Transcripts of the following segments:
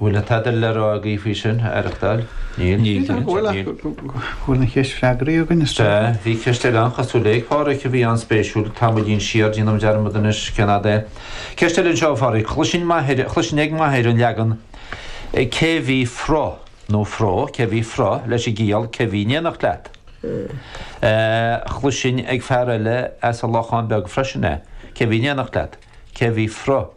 Bhfuil tada le rá agaibh faoi sin? Aireachtáil? Níl? Níl, go bhfuil ach go bhfuil an cheist freagraithe againn is dócha. Sea, bhí ceist eile an-chosúil ag Pádraic a bhí an-spéisiúil tamaillín siar, déanaim dearmad anois cén fhad é. Ceist eile anseo ó Phádraic, chloisinn m'athair, chloisinn ag m'athair an leagan cé bhí frot, nó fró, cé bhí frot, leis an gciall cé bhí in éineacht leat. Chloisinn ag fear eile as an Lochán Beag freisin é, cé bhí in éineacht leat, cé bhí frot.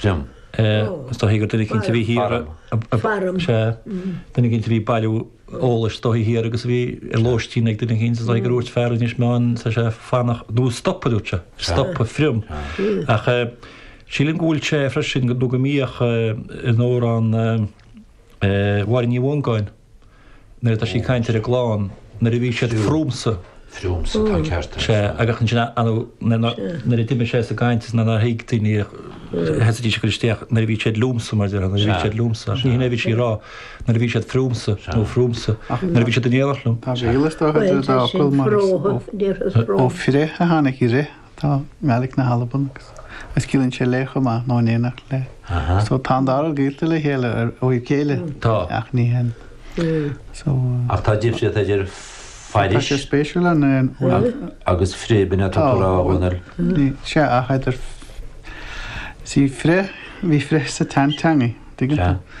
From. Is dóichí gur duine eicínt a bhí thiar a. From. Sea. Duine eicínt a bhí ag bailiú eolais is dóichí thiar agus a bhí ar lóistín ag duine eicínt is dóichí gur úirt fear Inis Meáin tá sé ag fanacht nó stopadh a dúirt sé. Stopadh from. Ach sílim go bhfuil sé freisin nó go mbíodh in Amhrán Mháire Ní Mhongáin. Nuair atá sí ag caint ar an gclann, nuair a bhí siad fromsa. Fromsa, tá an ceart agat. Sea, agus ansin ar ndóigh, nuair a d'imigh sé as an gcaint is nuair nár thuig daoine, thosaídís ag cur isteach, nuair a bhí siad liomsa, mar a déarfá, nuair a bhí siad liomsa. Ní shin é a bhí sí ag rá, nuair a bhí siad friomsa, nó fromsa, nuair a bhí siad in éineacht liom. Tá gaol is dócha idir an dá fhocal mar is ó fri a tháinig ri. Tá i nGaeilge na hAlban agus agus ciallaíonn sé le chomh maith nó in éineacht le. Aha. So tá an dá rud gaolta le chéile ar ó thaobh céille. Tá. Ach ní hionann. So. Ach tá difríocht idir fairis. Tá sé spéisiúil an é an. Agus fri b'in atá tú rá a Dhónaill. Ní, sea, ach idir is í fri, bhí fri sa tseanteangaidh, tuigeann tú?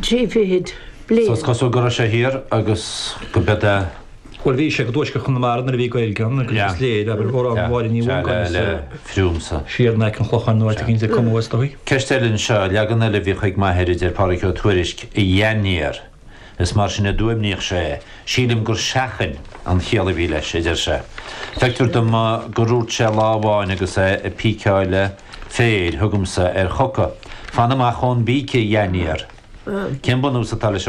Trí fichid bliain. So is cosúil go raibh sé thiar agus go b'ea de. Bhuel bhí sé i dtuaisceart Chonamara nuair a bhí Gaeilge ann agus is léir, abair, amhrán Mháire Ní Mhongáin is thiar in aice an Chlocháin nó áit eicínt a cumadh, is dóigh. Ceist eile anseo, leagan eile a bhí chuig m'athair, a deir Pádraic Ó Tuairisc, a dhainéar, is mar sin a d'fhuaimníodh sé é. Sílim gur seachain an chiall a bhí leis, a deir sé. Feictear dom go rúirt sé lá amháin agus é ag píceáil le. Féir chugamsa ar choca. Fan amach ón bpíce, dhainéar. Cén bunús atá leis an.